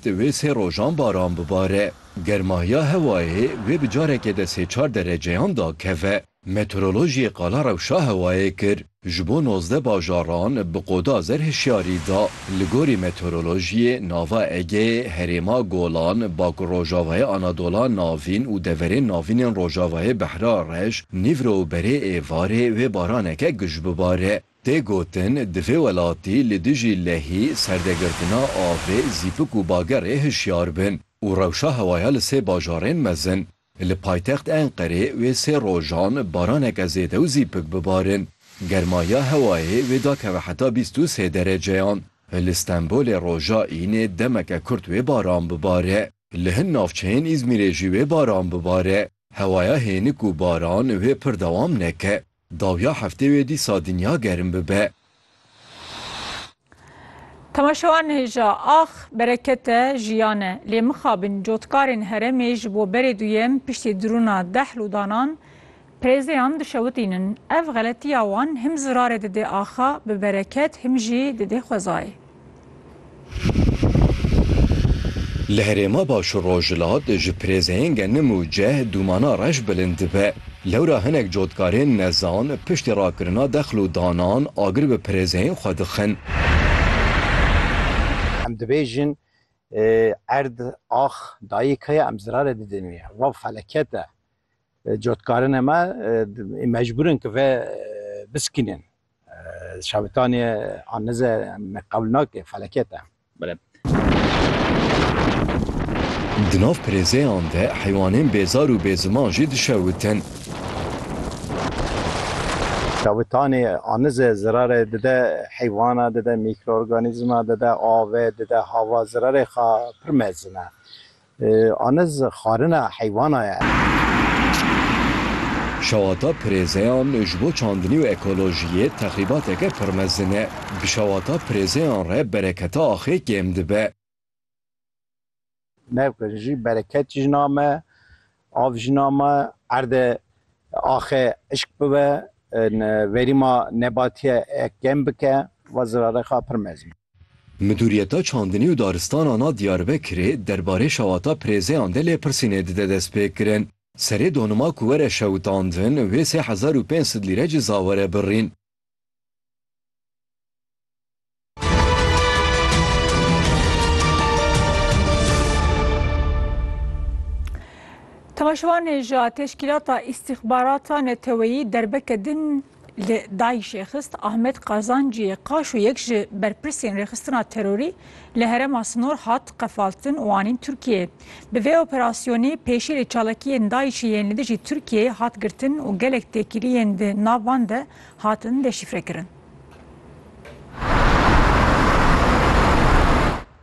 Di wê sê rojan baran bibare. Germahiya hewayê vê bi careke de sê çar dereceyan dakeve. Meteorolojiyê qala rewşa hewayê kir. Ji bo nozdeh bajaran bi qoda zer hişyarî da. Li gorî meteorolojiyê nava Egeyê, herêma Golan, bakurrojavayê Anadola Navîn û deverên navîn ên rojavayê Behra Reş, Nîvro û berê êvarê vê baraneke guj bibare. Tê gotin di vê welatî li dijî lehî, serdegirtina avê, zîpik û bagerê hişyar bin û rewşa hewaya li sê bajarên mezin. Li paytext Enqerê wê sê rojan baraneke zêde û zîpik bibarin. Germahiya hewayê wê da keve heta bîst û sê dereceyan. Li Stenbolê roja înê demeke kurt wê baran bibare. Li hin navçeyên Îzmîrê jî wê baran bibare. Hewaya hênik û baran wê pir dewam neke. Dawiya heftê wê dîsa dinya gerim bibe. Temaşewan hêja, ax, bereket e, jiyan e. Lê mixabin cotkarên herêmê ji bo berê duyem piştî dirûna dehl û danan prêzeyan dişewitînin. Ev xeletiya wan him zirarê didê axa bi bereket him jî didê xwezayê. Li herêma baş û rojhilat ji pirêzeyên genim û ceh dûmana reş bilind dibe. Lewra hinek cotkarên nezan piştî rakirina dexl û danan agir bi pirêzeyên xwe dixin. Em dibêjin erd, ax, dayîk heye em zirarê didin wî. Ev feleket e. Cotkarên me mecbûr in ku vê biskînin. Şabitanê an nize me qewl nake felaket e. Di nav pirêzeyan de heywanên bêzar û bêziman jî dişewitin. Şabitanê an nize zirarê dide heywana, dide mîkroorganîzma, dide avê, dide hava, zirarê xwe pir mezin e. Aniz xwarina heywana ye. Şewata pirêzeyan ji bo çandinî û ekolojiyê texrîbateke pir mezin e. Bi şewata pirêzeyan re bereketa axê kêm dibe. Navkirî jî bereket jî name. Av jina me erde axe ışk bibe, verîma nebatiye kêm bike va Zirarexa Pirmezin. Midûriyeta Çandinî û Daristanan a Diyarbekirê derbarê şewata pirêzeyan de lêpirsînê dide destpêkirin. Serê donima ku were şewitandin wê sê hezar û pênc sed lîre ciza were birîn. Temaşevanê ji teşkîlata îstîxbarata neteweyî derbeke din li Daîşê xist Ahmet Qazancî qaş û yek ji berpirsên rêxistina terorî li herema sinor hat qefaltin û anîn Tirkiyeyê. Bi vê operasyonê pêşîrê çalakiyên DAIŞ'ê yên li dijî Tirkiyeyê hat girtin û gelek têkiliyên di nav wan de hatin deşîfrekirin.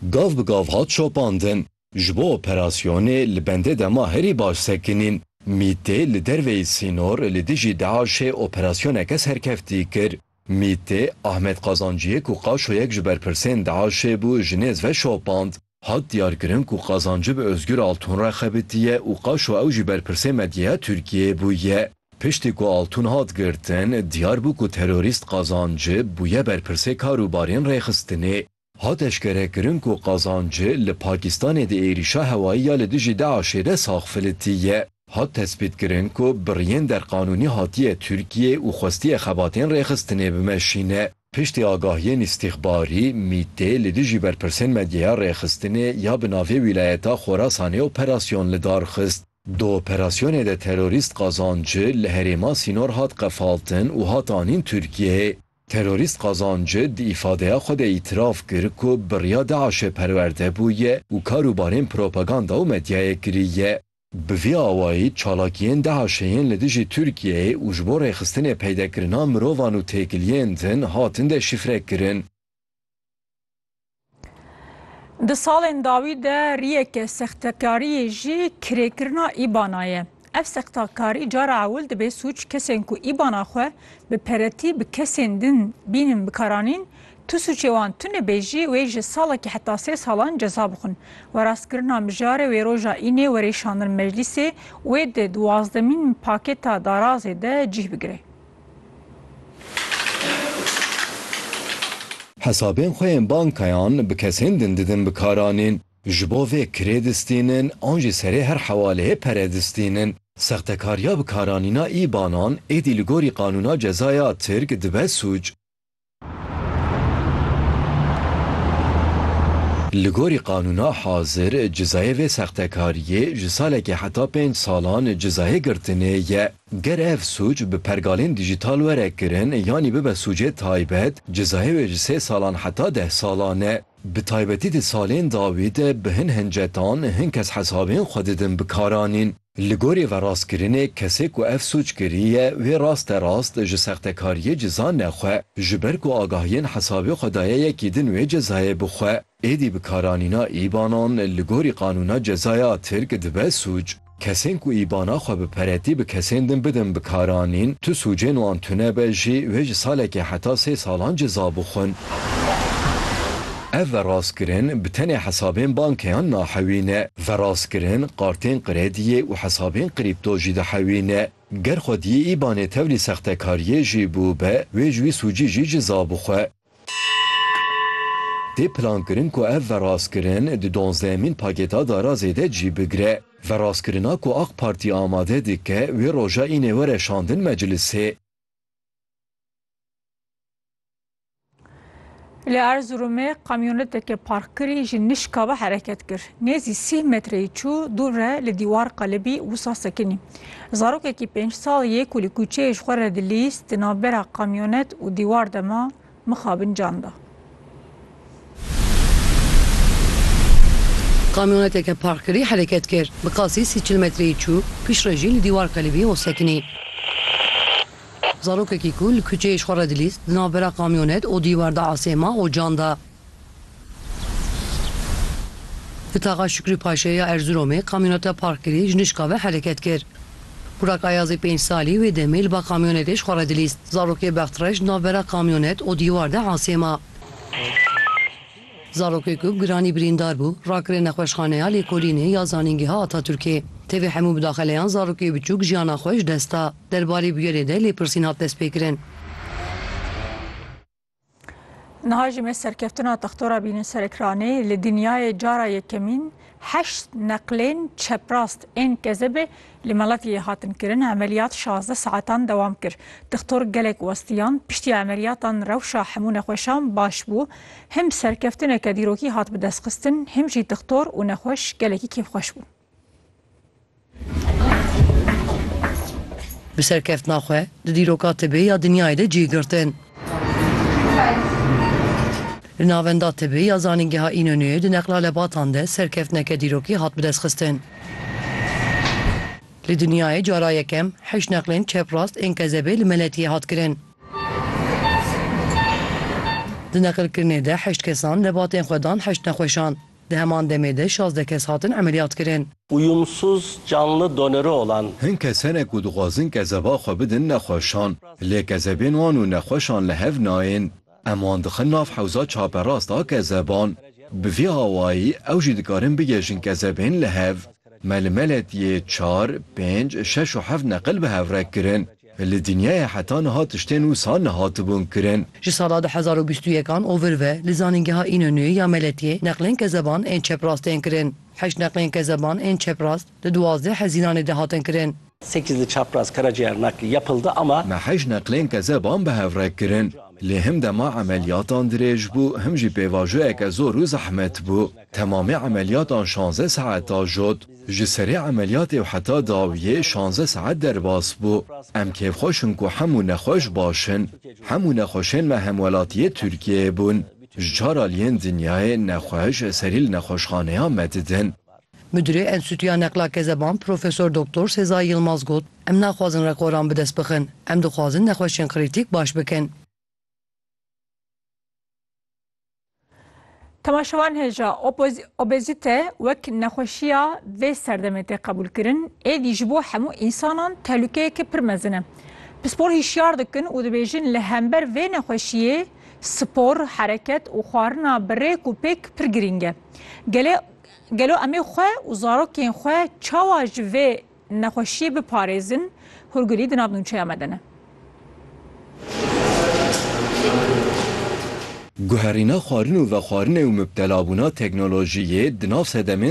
Gav bi gav hat şopandin. Ji bo operasyonê li bendê dema herî baş sekinîn. MĪT'ê li derveyî sînor li dijî DAIŞ'ê operasyoneke serkeftî kir. MÎT'ê Ahmet Qazanciyê ku qaşoyek ji berpirsên DAIŞ'ê bû ji nêz ve şopand. Hat diyarkirin ku qazancı bi Ozgur Altun re xebitiye û qaşo ew jî berpirsê medyaya Tirkiyeyê bûye. Piştî ku Altun hat girtin, diyar bû ku terorîst Qazancı bûye berpirsê kar û barên rêxistinê. Hat eşkerekirin ku Qazancı li Pakîstanê di êrîşa hewayî ya li dijî DAIŞ'ê de sax filitiye. Hat tespîtkirin ku bi riyên derqanûnî hatiye Tirkiyeyê û xwestiye xebatên rêxistinê bimeşîne. Piştî agahiyên îstîxbarî, MĪT'ê li dijî berpirsên medyeya rêxistinê ya bi navê Wîlayeta Xorasanê operasyon li dar xist. Di operasyonê de terorîst Qazancı li herêma Sînor hat qefaltin û hat anîn Tirkiyeyê. Terorîst Qazancı di îfadeya xwe de îtiraf kir ku bi riya DAIŞ'ê perwerde bûye û kar û barên propaganda û medyayê kiriye. Bi vî awayî çalakiyên DHK'ê yên li dijî Tirkiyeyê û ji bo rêxistinê peydekirina mirovan û têkiliyên din hatin deşîfre kirin. Di salên dawî de riyeke sextekariyê jî kirêkirina îbana ye. Ev sextekarî cara ewil dibê sûc kesên ku îbana xwe bi peretî bi kesên din bînin bikaranîn Tu sûcê wan tune bêjî wê ji salekî heta sê salan ceza bixwin. Werastkirina mijarê wê roja înê were şandin meclîsê û wê di duwazdemîn pakêta darazê de cih bigire. Hesabên xwe yên bankayan bi kesên din didin bikaranîn. Ji bo vê kirê distînin an jî serê her hewaleyê pere distînin. Sextekariya bikaranîna îbanan êdî li gorî qanûna cezaya Tirk dibe sûc. Li gorî qanûna hazir cizayê vê sextekariyê ji salekê heta pênc salan cizayê girtinê ye. Ger ev sûc bi pergalên dîjîtal were kirin yanî bibe sûcê taybet, cizayê wê ji sê salan heta deh salan e. Bi taybetî di salên dawî de bi hin hincetan hin kes hesabên xwe didin bi karanîn. Li gorî verastkirinê kesê ku ev sûc kiriye wê raste rast ji sextekariyê cizane xwe ji ber ku agahiyên hesabê xwe daye yekî din wê cezayê bixwe. Êdî bikaranîna îbanan li gorî qanûna cezaya Tirk dibe sûc. Kesên ku îbana xwe bi peretî bi kesên din bidin bikaranîn tu sûcên wan tune be jî wê ji salekê heta sê salan ceza bixwin. Ev verastkirin bi tenê hesabên bankeyan nahewîne. Verastkirin kartên krediyê û hesabên krîpto jî dihewîne. Ger xwediyê îbanê tevlî sextekariyê jî bûbe, wê ji wî sûcî jî ciza bixwe. Tê plankirin ku ev verastkirin di donzdehemîn pakêta darazê de cî bigire. Verastkirina ku Ak Partî amade dike wê roja înê were şandin meclisê. Li Erzurumê kamyoneteke parkkirî ji nişka ve hereket kir. Nêzî sî metreyî çû dûr re li dîwar qelibî wisa sekinî. Zarokekî pênc sal yê ku li kûçeyê ji xwe re dilîst di navbera kamyonet û dîwar de ma mixabin can da. Kamyoneteke parkkirî hereket kir. Bi qasî sî çil metreyî çû piştrejî li dîwar qelibî û sekinî. Zarokekî ku li kuçeyê ji xwe re dilîst di navbera kamyonet û dîwar de asê ma û can da. Li taxa Şikrî Paşayê ya Erziromê kamyoneta parkkirî ji nişka ve hereket kir. Burak Ayazê pênc salî wê demê li ba kamyonetê ji xwe re dilîst. Zarokê Bextreş di navbera kamyonet û dîwar de asê ma. Zarokê ku bi giranî birîndar bû, rakirê Nexweşxaneya Lêkolînê ya Zanîngeha Atatürkê. Tevî hemû midaxeleyan zarokê biçûk jiyana xwe ji dest da. Derbarê bûyerê de lêpirsîn hat destpêkirin. Niha jî me serkeftina textora bîne ser ekranê. Li dinyayê cara yekemîn heşt neqlên çeprast ên kezebê Li Meletiyê hatin kirin, emeliyat şazdeh saetan dewam kir. Dixtor gelek westiyan, piştî emeliyatan rewşa hemû nexweşan baş bû. Him serkeftineke dîrokî hat bi dest xistin, him jî dixtor û nexweş gelekî kêfxweş bûn. Bi serkeftina xwe di dîroka tibê ya dinyayê de cî girtin. Li navenda tibî ya Zanîngeha Înonûyê di neqla lebatan de serkeftineke dîrokî hat bidestxistin. Li dinyayê cara yekem heşt neqlên çeprast ên kezebê li Meletiyê hat kirin. Di neqilkirinê de heşt kesan lebatên xwe dan heşt nexweşan. Di heman demê de şazdeh kes hatin emeliyatkirin. Uyumsuz canlı donörü olan. Hin kese ne ku dixwazin kezeba xwe bidin nexweşan, lê kezebên wan û nexweşan li hev nayên. Em wan dixin nav hewza çaperast a kezeban. Bi vî awayî ew jî dikarin bigihêjin kezebên li hev. Me li Meletiyê çar, pênc, şeş û heft neqil bi hev re kirin. Li dinyayê heta niha tiştên wisa nehatibûn kirin. Ji sala du hezar û bîst û yek an ovir ve li zanîngeha Înonûyê ya Meletiyê neqlên kezeban ên çeprast tên kirin. Heşt neqlên kezeban ên çeprast li duwazdeh hezînanê de hatin kirin. Sekiz li çaprast karaciğer nakli yapıldı ama. Me heşt neqlên kezeban bi hev re kirin. Lê him dema emeliyatan dirêj bû him jî pêvajoyeke zor û zehmet bû. Temamê emeliyatan şanze saet a jot. Ji serê emeliyatê û heta dawiyê şanze saet derbas bû. Em kêfxweş in ku hemû nexweş baş in. Hemû nexweşên me hemwelatiyê Tirkiyeyê bûn. Ji çar aliyên dinyayê nexweş serî li nexweşxaneya me didin. Midirê Enstîtuya Neqla Kezeban Profesor Doktor Sezai Yilmaz got, Em naxwazin rekoran bi dest bixin. Em dixwazin nexweşên krîtîk baş bikin. Temaşevan hêja obezîte wek nexweşiya vê serdemê tê qebûlkirin, êdî ji bo hemû însanan tehlûkeyeke pir mezin e. Pispor hîşyar dikin û dibêjin li hember vê nexweşiyê spor, hereket û xwarina bi rêk û pêk pir girîng e. Gelê Gelo emê xwe û zarokên xwe çawa ji vê Nexweşiyê biparêzin, hûrgilî di nav nûçeya me de ne. Guherîna xwarin û vexwarinê û mubtelabûna teknolojiyê di nav sedemên